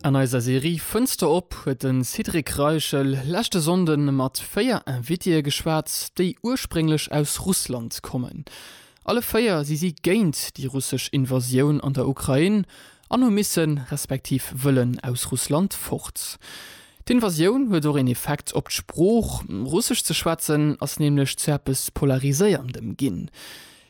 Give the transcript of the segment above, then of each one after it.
An eiser Serie Fënster op huet de Cédric Reichel leschte Sonnde mat véier Invitée geschwat, déi ursprénglech aus Russland kommen. Alle véier si si géint déi russesch Invasioun an der Ukrain an hu missen, respektiv wëllen aus Russland fort. D'Invasioun huet och een Effekt op d'Sprooch, Russesch ze schwätzen ass nämlech zu eppes Polariséierndem ginn.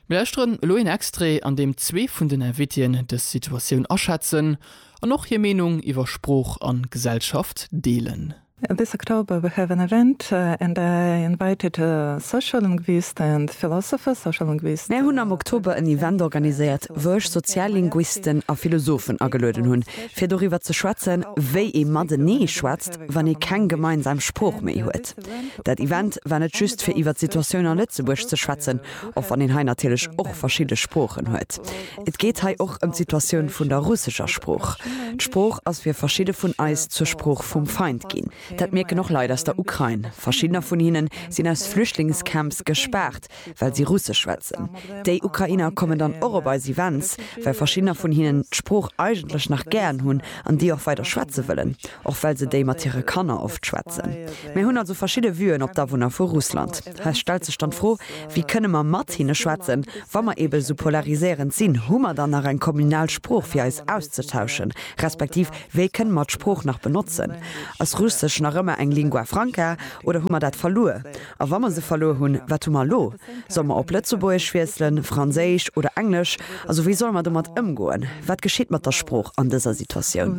Mir lauschteren elo een Extrait, an deem zwee vun den Invitien dës Situatioun aschätzen an och hir Meenung iwwer Sprooch an Gesellschaft deelen. This October we have an event and I invited a sociolinguist and philosopher, social linguist. Mär hunn am Oktober en Event organiséiert, wou ech Soziallinguisten a Philosophen agelueden hunn, fir doriwwer ze schwätzen, wéi ee matenee schwätzt, wann ee keng gemeinsam Sprooch méi huet. Dat Event war net just fir iwwer d'Situatioun a Lëtzebuerg ze schwätzen, och wann een hei natierlech och verschidde Sproochen huet. Et geet hei och ëm d'Situatioun vun der russescher Sprooch. D'Sprooch ass fir verschidde vun eis zur Sprooch vum Feind ginn. Dat mierken och Leit aus der Ukrain. Verschiddener vun hinnen sinn aus Flüchtlingscamps gespaart, well si russesch schwätzen. Déi Ukrainer kommen dann och op eis Events, well verschiddener vun hinnen d'Sprooch eigentlech nach gären hunn an déi och weider schwätze wëllen, och well se déi mat hire Kanner oft schwätzen. Mir hunn also verschidde Vuen op d'Awunner vu Russland. Hei stellt sech dann d'Fro, Wéi kënne mer mat hinne schwätzen, wa mer eebe sou polariséierend sinn? Hu mer dann nach eng kommunal Sprooch fir eis auszetauschen, respektiv wéi kënne mer d'Sprooch nach benotzen? Ass Russesch nach ëmmer eng Lingua Franca oder hu mer dat verluer? A wa mer se verluer hunn, wat hu mer elo? Soll mer op Lëtzebuergesch wiesselen, Franséisch oder Englesch? Also wéi solle mer domat ëmgoen? Wat geschitt mat der Sprooch an dëser Situatioun?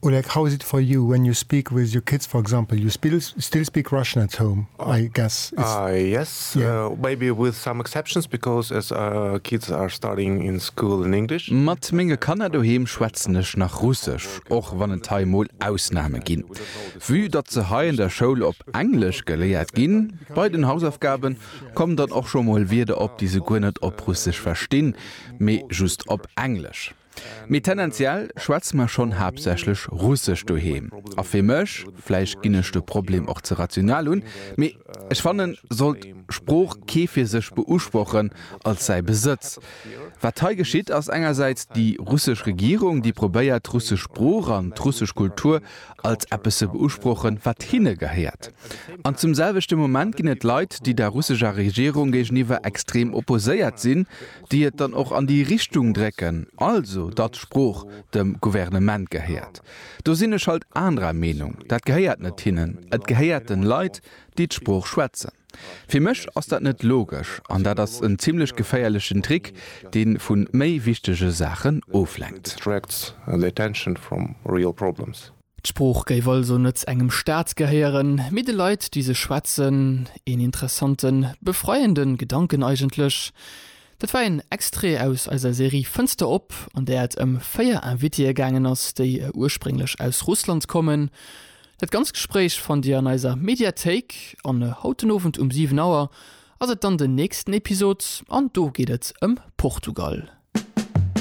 Or like how is it for you when you speak with your kids for example you still speak Russian at home I guess it's yes maybe with some exceptions because as our kids are studying in school in English. Mat menge Kanner doheem schwätzen ech nach Russesch, och wann et hei mol Ausname ginn. Vue datt se hei an der Schoul op Englesch geléiert ginn, bei den Hausaufgaben kommen dann och scho mol Wierder op déi se guer net op Russesch verstinn mee just op Englesch. Mee tendenziell schwätze mer schonn haaptsächlech Russesch doheem. A fir mech, vläicht ginn ech de Problem och ze rational un, mee ech fannen, sollt d'Sprooch kee fir sech beusprochen, als säi Besëtz. Wat hei geschitt, ass engersäits déi russesch Regierung, déi probéiert d'russesch Sprooch an d'russesch Kultur als eppes ze beusprochen, wat hinne gehéiert. An zum selwechte Moment ginn et Leit, déi der russescher Regierung géigeniwwer extrem opposéiert sinn, déi et dann och an déi Richtung drécken, also datt d'Sprooch dem Gouvernement gehéiert. Do sinn ech halt anerer Meenung. Dat gehéiert net hinnen, et gehéiert den Leit, déi d'Sprooch schwätzen. Fir mech ass dat net logesch an dat ass en zimlech geféierlechen Trick, dee vu méi wichtege Saachen oflenkt. D'Sprooch géif also net engem Staat gehéieren, mee de Leit, déi se schwätzen. Een interessante, befreiende Gedanken eigentlech. Dat war een Extrait aus eiser Serie Fënster op, an där et ëm véier Invitéë gaangen ass, déi ursprénglech aus Russland kommen. Dat ganzt Gespréich fannt Dir an eiser Mediathéik. An haut den Owend um 7 Auer ass et dann den nächsten Episod, an do geet et ëm Portugal.